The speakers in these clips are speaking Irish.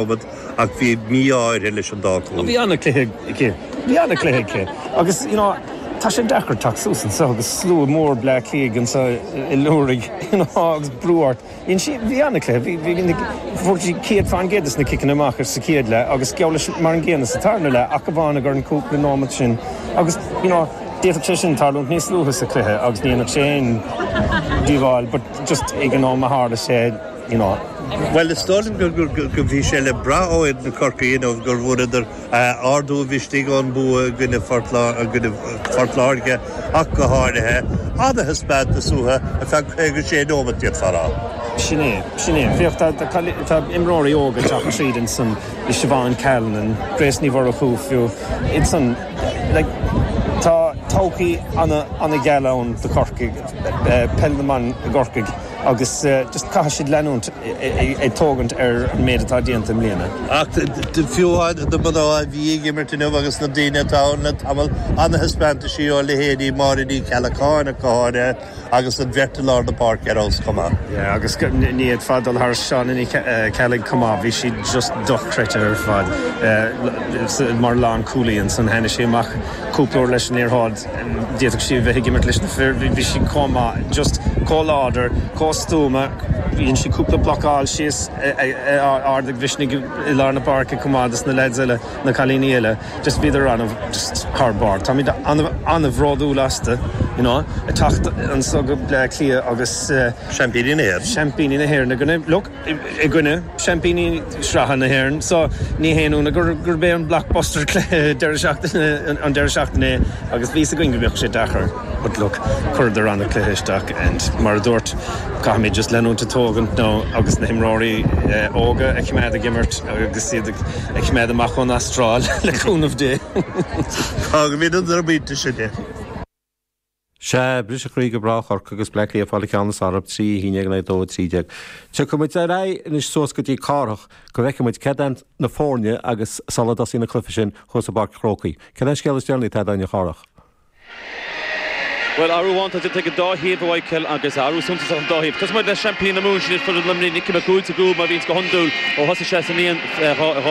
Covid ach bhí mí-ádh uirthi leis an dá chúl. Bhí an-chluiche aici. Bhí an-chluiche aici agus you know tá sé deacair teacht suas anseo agus slua mór Bleá Cliaigh anseo ag liúirigh you know agus brú ort. Bhí sí, bhí an-chluiche, bhí, bhí, fuair sí céad fán gcéad as na ciceanna amach sa chéad leath agus geall leis mar an gcéanna sa tarna leath ach amháin i gcomhair an cúpla nóimeat sin agus you know d'fhéadfadh sé sin tarlúint níos luaithe sa chluiche agus ní dhéanfadh sé aon díobháil but just ag an am a tharla sé, Bhuel, is dóigh liom go bhí sé le brath ó fhoireann Chorcaí inniu go bhfuaireadar ardú mhisnigh ón mbua i gcoinne Phort Láirge ach go háirithe. Ana thaispeántas uathu ar feadh 56 nóimeat, d'fhéadfá a rá. Sin é, sin é. Féach, tá imreoirí óga ag teacht tríd ansan, Siobhán Callanan, Grace Ní Mhurchú fiú. Ansan, tá todhchaí ana gheal ann do Chorcaigh, peil na mban i gCorcaigh. agus just caithfidh siad leanúint ag tógaint ar an méid atá déanta i mbliana. Ach fiú amháin na mná a bhí ag imirt inniu agus na daoine atá ann le tamall, an-thaispeántaisí ó leithéidí Máire Ní Cheallacháin ach go háirithe agus an bheirt i lár na páirce ar fheabhas chomh maith. Yeah agus ní fhéadfá dul thar Shauna Ní Cheallaigh chomh maith, bhí sí just dochreidte ar fad mar lánchúlaí ansan tháinigh sí amach cúpla uair leis an liathróid, d'fhéadfadh sí a bheith ag imirt leis na fir, bhí sí chomh maith, just chomh láidir, chomh stuama, dhein sí cúpla blocáil síos ardú mhisnigh i lár na páirce chomh maith dos na leaids eile, na cailíní eile, just bhíodar ana mhaith, just thar barr, táimid ana, ana bhródúil astu, you know, ag teacht anseo go Bleá Cliath agus. Seaimpíní na hÉireann. Seaimpíní na hÉireann, look. i gcoinne seaimpíní sraithe na hÉireann so ní haon ionadh gurb é an blockbuster cluiche an deireadh seachtaine é agus bhí a fhios againn go mbeadh sé deacair but look chuireadar ana chluiche isteach and mar a dúirt caithfimid just leanúint ag tógaint nó agus na himreoirí óga a choimeád ag imirt agus iad a choimeád amach ón Astráil le cúnamh Dé. Fágfaimid é ar an bpointe sin. Sea, briseadh croí do mhná Chorcaí agus Bleá Cliath ag fáil an ceann is fearr orthub 3-11 in aghaidh 2-13. Tiocfaidh muid ar aghaidh anois suas go dtí Cárthach go bhfeicfidh muid céard iad na foirne agus sula dtosaíonn an cluife sin thuas i bPáirc an Chrócaigh, céard é an scéal is deireanaí atá ag daoine a Chárthaigh? Bhuel, athrú amháin atá déanta ag an dá thaobh a Mhichíl agus athrú suntasach ag an dá thaobh. Tosóidh muid le seaimpíní na Mumhan, sin iad foireann Luimnigh, Nicky Mac Uaid sa gcúl mar a bhíonns go hiondúil ó thosaigh sé sa mbliain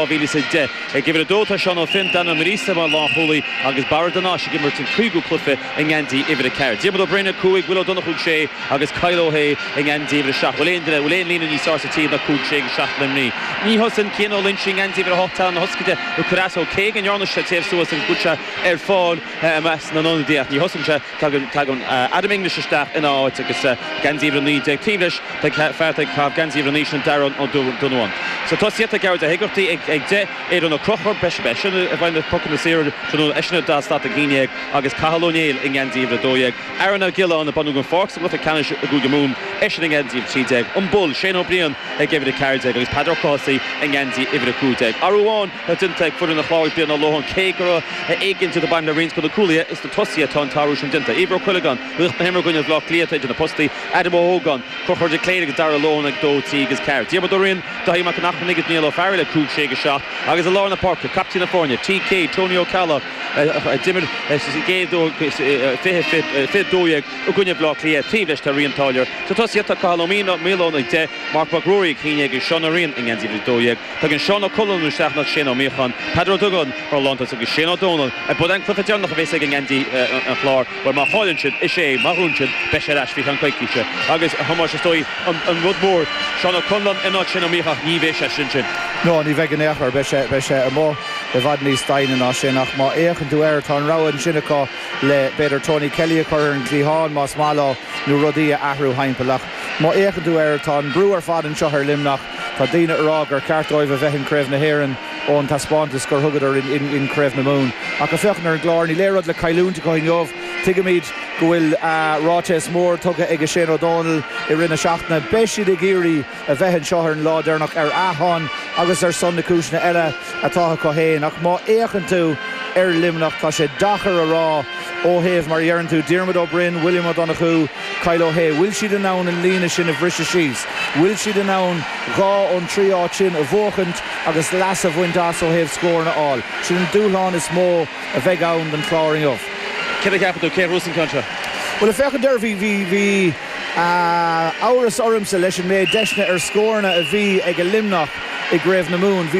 2010. Ag uimhir a dó tá Seán Ó Finn, Dan Ó Muireasa mar lánchúlaí agus Barra de Nais ag imirt an cúigiú cluiche i ngeansaí uimhir a ceathair. Diarmuid Ó Broin, a cúig, Will Ó Donnchadha, a sé, agus Kyle Ó hAodh i ngeansaí uimhir a seacht. Bhfuil aon duine, bhfuil aon líne níos tábhachtaí ná cúig, sé agus seacht Luimnigh? Ní thosaíonn Cian Ó Loinsigh i ngeansaí uimhir a hocht, teannán na hioscaide ag cur as dó. Cé go ndearna sé téamh suas agus go bhfuil sé ar fáil i measc na n-ionadaí ach ní thosaíonn sé. Tagann Adam English isteach ina áit agus Geansaí Uimhir 19 taobh leis. Beidh fear ag caitheamh Geansaí Uimhir 9 sin, Darragh Ó Donnabháin. Sna tosaithe tá Gearóid Ó hÉigeartaigh ag 10, Aidan Ó Conchúir, beidh seisean i mbun na bpocanna saora tráthnóna, eisean a d'fhás slat ag 11, agus Cathal Ó Néill i nGeansaí Uimhir 12. Aaron Ó Giolláin a baineadh den pháirc sa bhabhta ceannais i gCúige Mumhan, eisean i nGeansaí Uimhir 13. An Bull, Shane Ó Briain ag Uimhir 14 agus Peadar Ó Cathasaigh i nGeansaí Uimhir 15. Athrú amháin. atá déanta ag foireann an Chláir Brian Lohan cé go raibh éiginnteacht ag baint le roinnt de na cúlaithe is sna tosaithe atá an t-athrú sin déanta, Éibhear Ó Cuilleagáin, laoch na himeartha i gcoinne Bhleá Cliath, idir na postaí, Adam Ó hÓgáin, Conchúr de Cléir agus Dara Lohan ag dó, trí agus ceathair, Diarmuid Ó Riain, Dáithí Mac an Airchinnigh agus Niall Ó Fearghail ag cúig, sé agus seacht, agus i lár na páirce, captaen na foirne, TK, Tony Ó Ceallaigh, a d'imir an chéad uair fiche a dó dhéag i gcoinne Bhleá Cliath taobh leis tá Ryan Táilliúir. Sna tosaithe tá Cathal Ó Maoileoin ag deich, Marc Mac Ruairí ag haon déag agus Seán Ó Rinn i ngeansaí a dó dhéag. Tagann Seán Ó Conláin isteach in áit Shane Ó Míocháin, Peadar Ó Dugáin mar lántosaí agus Shane Ó Domhnaill ab é an cluiche deireanach a bheas aige i ngeansaí an Chláir bhuel má chailleann siad is é má bhuann siad beidh sé ar ais faoi cheann coicíse agus a Thomáis is dóigh an rud mór Seán Ó Conláin in áit Shane Ó Míocháin ní bheidh seisean ansin. No, ní bheidh in aon chor. Beidh sé, beidh sé amuigh i bhfad níos doimhne ná sin ach má fhéachann tú air tá an rogha ansin acu le b'fhéidir Tony Kelly a chur ar an gcliathán más maith leo nó rudaí a athrú thimpeall ach má fhéachann tú air tá an brú ar fad anseo ar Luimneach Tá daoine ag rá gur cheart dóibh a bheith in Craobh na hÉireann ón taispeántas gur thugadar in Craobh na Mumhan. Ach ag féachaint ar an gClár, níl aon rud le cailliúint acu inniu. Tuigimid go bhfuil ráiteas mór tugtha aige Shane Ó Domhnaill i rith na seachtaine. Beidh siad ag iarraidh a bheith anseo ar an lá deireanach ar a shon agus ar son na cúiseanna eile. atá acu féin. Ach má fhéachann tú ar Luimneach, tá sé deacair a rá ó thaobh, mar a dheireann tú, Diarmuid Ó Broin, William Ó Donnchú, Kyle Ó hAodha. Bhfuil siad in ann an líne sin a bhriseadh síos? Bhfuil siad in ann dhá ón trí áit sin a bhuachaint agus leas a bhaint as ó thaobh scóranna a fháil? Sin an dúshlán is mó a bheidh ann don Chlár inniu. Céard a cheapann tú? Cé a bhuafas an ceann seo? Bhuel, ag féachaint air, bhí, bhí, bhí amhras ormsa leis an méid deiseanna ar scóranna a bhí aige Luimneach i gCraobh na Mumhan. Bhí.